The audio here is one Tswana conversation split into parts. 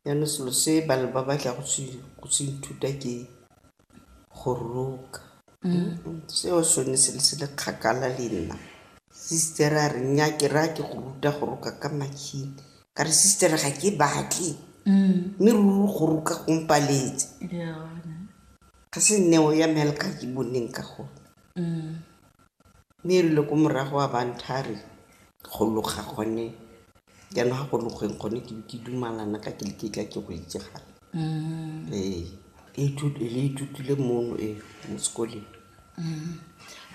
Jaanong selo se ba batla go se ithuta ke go roka. Seo sone se le se le kgakala le nna. Sister a re nnyaa ke raya ke go ruta go roka ka machine. Ka re sister ga ke batle, mme ruri go roka go mpaletse. Ga se neo ya me ya le ka ke boneng ka gone. Mme e rile ko morago a ba ntha a re, go loga gone jaanong ga go logweng gone ke be ke dumalana ka ke le ke tla ke go itse gape. Ee. Le ithutile mono e mo sekoleng.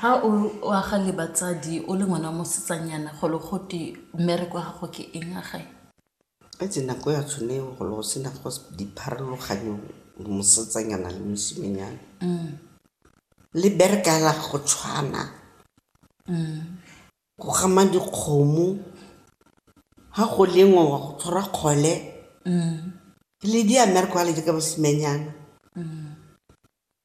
Ha o o aga le batsadi o le ngwana wa mosetsanyana go le gote mmereko wa gago ke eng a gae? Itse nako ya tshone eo go ne go sena go dipharologanyo mosetsanyana le mosimenyana. Le bereka hela go tshwana, go gama dikgomo, ha go lengwa wa go tshwara kgole, le di a mmerekwa hela jaaka basimenyana.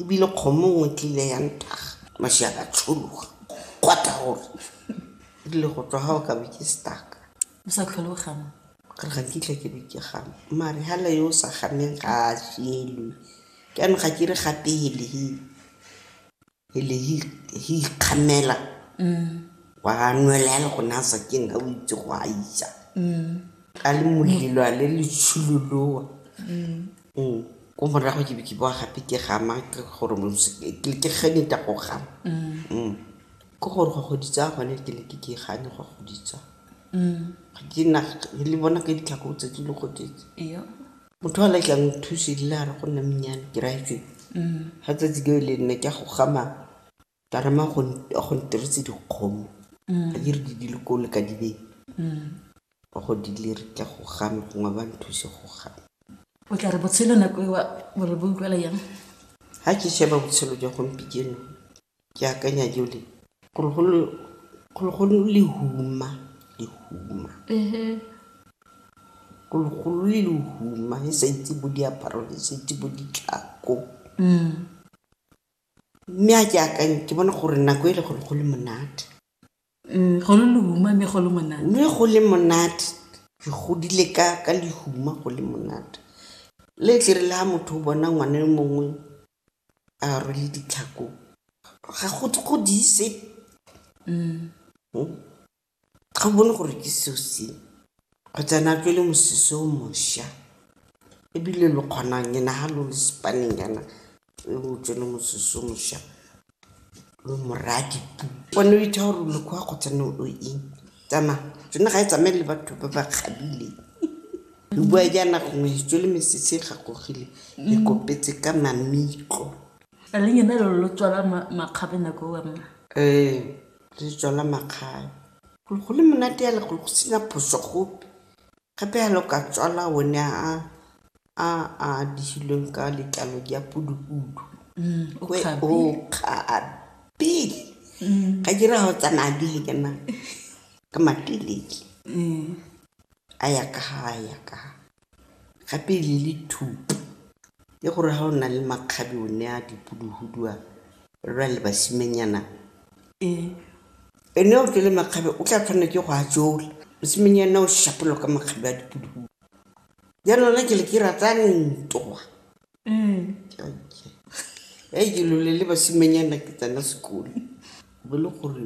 ebile kgomo nngwe tlile ya ntaga mašia ka tshologa kgwata gore e rile go tswa ga o ka be ke staka o sa tlhole o gama ka re ga kitla ke be ke gama mare gala yo o sa gameng ga a jelwe ke ano ga ke re gape ele he ikgamela wa nwela ya le gone a sa ke nna o itse go a isa ka le molelo a le letshuloloa mm. ko morago ke be ke boa gape ke gama ke gore ke genita go gama mm. ke gore go goditsa gone ke ne ke ke gane go goditsa ke na le bona ka ditlhako tse di le goditse motho a letlang thusi le a re go nna menyane ke raitswe ga tsatsi ke le nne ke go gama Ka re mma go ntiretse dikgomo ga ke re di dile ko le ka di beng ba go di le re tla go gana gongwe ba nthuse go gana. O tla re botshelo nako ewa o re bo utlwala yang? Ga ke sheba botshelo jwa gompikeno ke akanya jole gore golo lehuma e sa itse bo diaparo le sa itse bo ditlhako. Mme a ke akanye, ke bona gore nako e le go ne go le monate. Go le lehuma mme go le monate. Mme go le monate, re godile ka lehuma go le monate. Le tle e re le ha motho o bona ngwana yo mongwe a rwele ditlhako, ga go diise. Ga o bone gore ke seo se go tsena ke le mosese o mošwa ebile lo kgonang nyana ga lo le sepaneng yana e o tsene mosese o mošwa lo moraya dipu one o itha gore lokwa go tsena o eng tsamaya tsone ga e tsamaye le batho ba ba kgabile lo bua jaana gongwe itso le mesese e gakogile le kopetse ka mamitlo a le nyana lo lo tswala makgabe nako owa mma um re jala makgabe. Go le monate hela go sena phoso gope, gape hela o ka tswala one a a dirilweng ka letlalo la phudufudu, o kgabe, ga ke re ha o tsamaya le ena ka matelele, a ya ka ha, a ya ka ha. Gape le le thuto, ke gore ha o na le makgabe o ne a dipuduhudu a lwa le basimenyana, ene o tswele makgabe o tla tshwanela ke go a tšola, mosemenyana o šapologa ka makgabe a dipuduhudu. Jaanong nna ke le ke rata ntwa, ke lole le basimenyana ke tsena sekolo, bo le gore.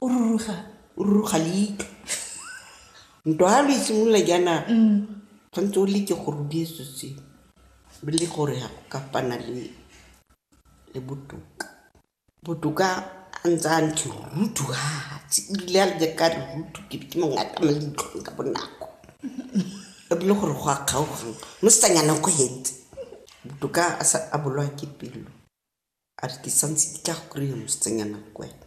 O ruruga. O ruruga leitlho. Ntwa ha lo isimolola jaana tshwanetse o leke gore o diye so se o le gore ga go ka fana le le botoka. Botoka a ntse a ntse ruthu hatsi ebile a le ka ruthu ke ke mo ngata mo leitlhong ka bonako. E bile gore go a kgaogana mo se tanyana ko hetse. Botoka a sa a bolwa ke pelo a re ke santse ke tla go kry-a mosetsanyana ko wena.